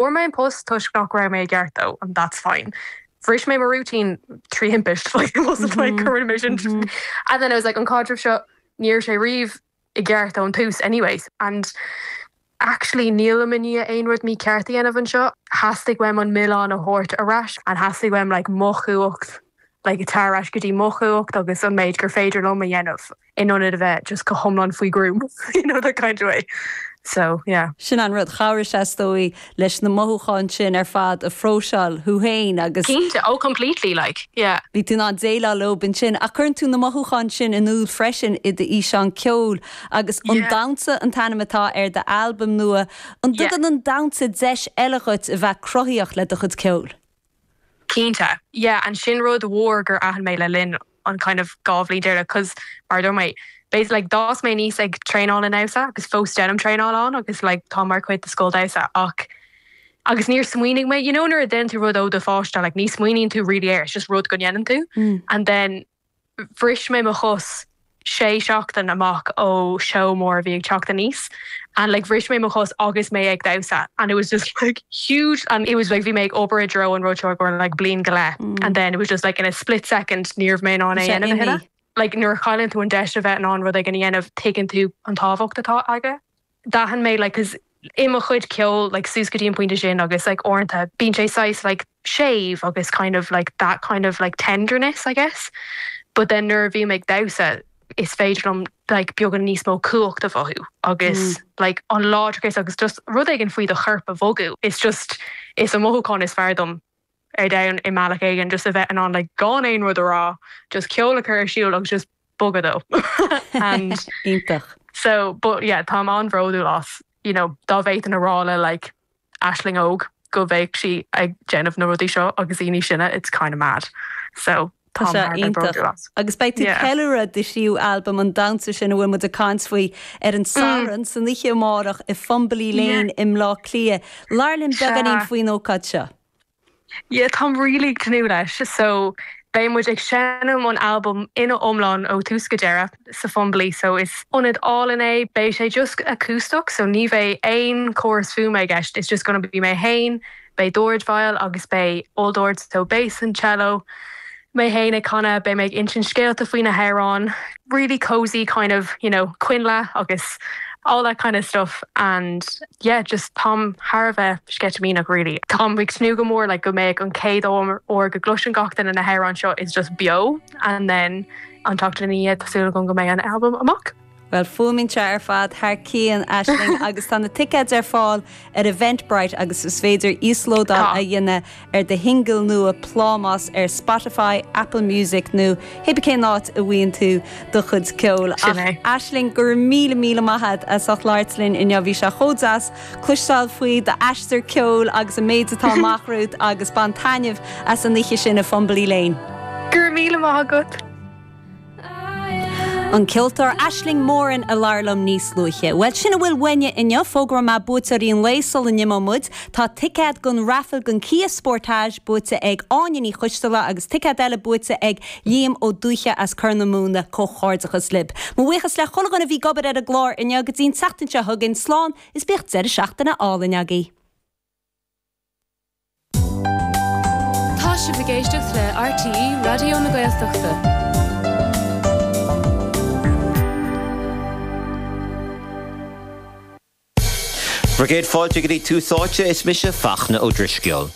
Fuair mé an post toisc nach raibh mé i gceart dó and that's fine. Bhris mé mo routine trí thimpist like it wasn't like go rinne mé sin and then I was like an caidreamh seo ní raibh sé riamh i gceart ón tús anyway and actually nílim i ndiaidh aon rud mícheart a dhéanamh anseo. Theastaigh uaim an milleán a thabhairt ar ais and theastaigh uaim like mo chumhacht like a thabhairt ar ais go dtí mo chumhacht agus an méid gur féidir liom a dhéanamh. in ionad a bheith just go hiomlán faoi gruaim you know that kind of way so yeah. Sin an rud, chabhraigh sé is dóigh leis na mothúcháin sin ar fad a phróiseáil thú féin agus. Cinnte, oh completely like, yeah. Bhí tú in ann déileáil leob ansin ach cuireann tú na mothúcháin sin in iúl freisin i d'fhíseán ceoil agus An Damhsa an t-ainm atá ar d'albam nua, an dtugann an damhsa deis eile dhuit a bheith cruthaitheach le do chuid ceoil? Cinnte. Yeah, and sin rud mhór gur aithin mé le linn an kind of dhá bhliain deireanach, 'cause mar a dúirt mé, b'fhéidir like d'fhás mé aníos ag traenáil an damhsa agus fós deinim traenáil ann agus like táim mar chuid de scoil damhsa ach agus níor smaoinigh mé, you know nuair a deineann tú rud ó do pháiste like ní smaoiníonn tú really air, it's just rud go ndeineann tú and then, Bhris mé mo chos sé seachtain amach ó seó mór a bhí ag teacht aníos and like bhris mé mo chos agus mé ag damhsa and it was just like huge and it was like bhí mé ag obair i dtreo an rud seo ar feadh like bliain go leith and then it was just like in a split second ní raibh mé in ann é a dhéanamh a thuilleadh. Like nuair a chailleann tú an deis a bheith in ann rud éigin a dhéanamh tuigeann tú an tábhacht atá aige. d'aithin mé like cause i mo chuid ceoil like suas go dtí an pointe sin agus like uaireanta bíonn sé saghas like séimh agus kind of like that kind of like tenderness I guess but then nuair a bhím ag damhsa is féidir liom like beagán níos mó cumhacht a mhothú agus like an láidreachas agus just rud éigin faoi do chorp a bhogadh it's just is an mothúchán is fearr dom. ar domhan i mbealach éigin, just a bheith in ann like gan aon rud a rá, just ceol a chur ar siúl agus just bogadh dó and Iontach. so but yeah táim an-bhródúil as you know dá bhféadfainn a rá le like aisling óg go mbeadh sí ag déanamh na rudaí seo agus daoine sine it's kind of mad so Tá sé iontach. táim thar a bheith bródúil as. Agus beidh tú Yeah. ceiliúradh do thríú albam an damhsa sin a bhfuil muid ag caint faoi ar an Satharn san oíche amárach i Fumbley Yeah. Lane i mBleá Cliath. Labhair linn Sea. beagáinín faoin ócáid seo. Yeah, táim really tnúth leis. So, beidh muid ag seinm an albam ina iomlán ó thús go deireadh sa Fumbly, so is ionad álainn é. Beidh sé just acústach, so ní bheidh aon córas fuaime i gceist, it's just gonna be mé féin, beidh dordveidhil agus beidh olldord, so bass and cello, mé fhéin ag canadh, beidh mé ag insint scéalta faoi na hamhráin, really cosy kind of you know coinnle agus all that kind of stuff and yeah just táim thar a bheith sceitimíneach really. Táim ag tnúth go mór like go mbeadh an chéad uair go gcloiseann gach duine na hamhráin seo is just beo and then an tseachtain ina dhiaidh tá súil agam go mbeidh an album amach. Bhuel, fuaimníonn sé ar fad thar cionn, Aisling, agus tá na ticéid ar fáil ar Eventbrite agus is féidir íoslódáil a dhéanamh ar do shingil nua Plámás ar Spotify, Apple Music nó cibé cén áit a bhfaigheann tú do chuid ceoil. Ach, Aisling, go raibh míle, míle maith a'd as ucht labhairt linn inniu, bhí sé chomh deas cloisteáil faoi d'aistear ceoil agus an méid atá amach romhat agus bain taitneamh as an oíche sin i Fumbally Lane. Go raibh míle maith agat! An ceoltóir Aisling Moran a labhair liom níos luaithe. Bhuel, sin a bhfuil uainne inniu. Fógróidh mé buaiteoirí an lae sula n-imeoidh muid. Tá ticéad don raifil don Kia Sportage buaite ag Áine Ní Choisdealbha agus ticéad eile buaite ag Liam Ó Dubhthaigh as Corr na Móna. Comhghairdeachas libh. Mo bhuíochas le chuile dhuine a bhí ag obair ar an gclár inniu. Go dtí an tseachtain seo chugainn, slán is bíodh deireadh seachtaine álainn agaibh. Tá sibh ag éisteacht le RTÉ Raidió na Gaeltachta. Móra dhaoibh, céad fáilte go dtí Tús Áite, is mise Fachtna Ó Drisceoil.